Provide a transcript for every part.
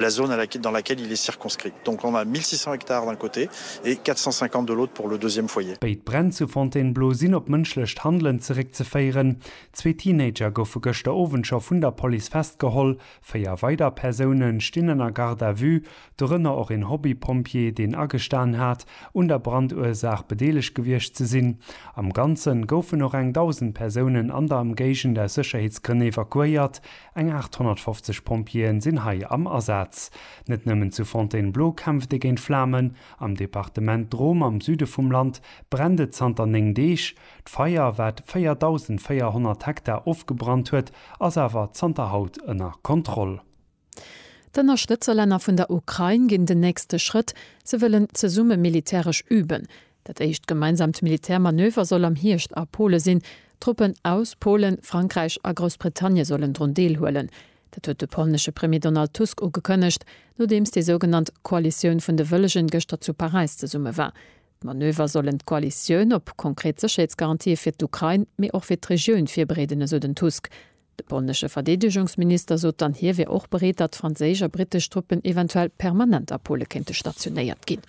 la zone à laquelle dans laquelle il est circonscrit. Donc on a 1.600 hectares d'un côté et 450 de l'autre pour le deuxième foyer. Béid Bränn zu Fontainebleau sinn op mënschlecht Handelen zeréckzeféieren. Zwee Teenager goufe gëschter Owend scho vun der Police festgeholl. Véier weider Persoune stinn ënner Garde à vue, dorënner och een Hobby-Pompjee, deen agestan hat, un der Brandursaach bedeelegt gewiescht ze sinn. Am Ganze goufen och eng 1.000 Persounen an der Emgéigend aus Sécherheetsgrënn evakuéiert, Eng 850 Pompjeeën sinn hei am Asaz. Net nëmmen zu Fontainebleau kämpft ee géint Flamen. Am Departement Drôme am Süde vum Land brennt et zanter 9 Deeg. D'Feier, wat 4.400 Hektar ofgebrannt huet, ass awer zanter haut ënner Kontroll. D'Ënnerstëtzerlänner vun der Ukrain ginn den nächste Schrëtt, se wëllen zesumme militäresch üben. Dat éischt gemeinsaamt Militärmanöver soll am Hierscht a Pole sinn. Truppen aus Polen, Frankräich a Groussbritannie sollen drun deelhuelen. Dat huet de polnesche Premier Donald Tusk ugekënnegt, nodeems déi sougenannt Koalitioun vun de Wëllegen gëschter zu Paräis zesumme war. D'Manöver sollen d'Koalitioun op konkret Sécherheetsgarantië fir d'Ukrain, mee och fir d'Regioun virbereeden, esou den Tusk. De polnesche Verdeedegungsminister sot dann, hie wär och bereet, datt franséisch a brittesch Truppen eventuell permanent a Pole kéinte stationéiert ginn.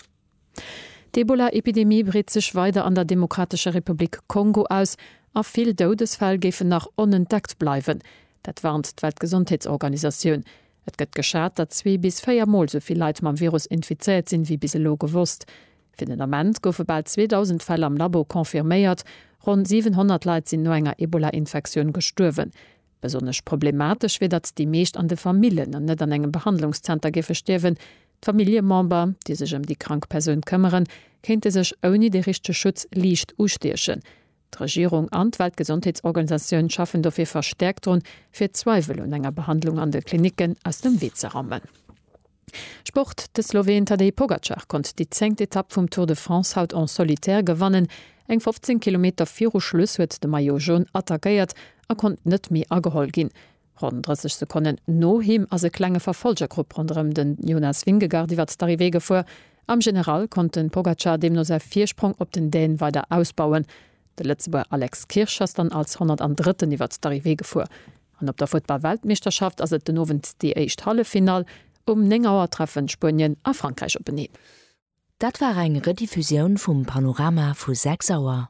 D'Ebola-Epidemie breet sech weider an der Demokratescher Republik Kongo aus a vill Doudesfäll géifen nach onentdeckt bleiwen. Dat warnt d'Weltgesondheetsorganisatioun. Et gëtt geschat, datt zwee bis véier Mol sou vill Leit mam Virus infizéiert sinn, wéi bis elo gewosst. Fir den Ament goufe bal 2.000 Fäll am Labo confirméiert. Ronn 700 Leit sinn no enger Ebola-Infektioun gestuerwen. Besonnesch problematesch wier, datt déi meescht an de Famillen an net an engem Behandlungszenter géife stierwen. D'Familljemember, déi sech ëm déi krank Persoun këmmeren, kéinte sech ouni de richtege Schutz liicht ustiechen. D'Regierung an d'Weltgesondheetsorganisatioun schaffen dofir verstäerkt drun, fir d'Zweiwel un enger Behandlung an de Klinicken aus dem Wee ze rammen. Sport, De Sloween Tadej Pogacar konnt déi zéngt Etapp vum Tour de France haut en solitaire gewannen. Eng 15 Kilometer viru Schluss huet de Maillot Jaune attackéiert a konnt net méi ageholl ginn. Ronn 30 Sekonnen no him ass e klenge Verfolgergrupp ronderëm de Jonas Vingegaard iwwert d'Arrivée gefuer. Am General konnt de Pogacar deemno säi Virsprong op den Däne weider ausbauen. De Lëtzebuerger Alex Kirsch ass dann als 103. iwwert d'Arrivée gefuer. An op der Futtball-Weltmeeschterschaft ass et den Owend déi éischt Halleffinall. Um 9 Auer treffen Spuenien a Frankräich openeen. Dat war eng Rediffusioun vum Panorama vu 6 Auer.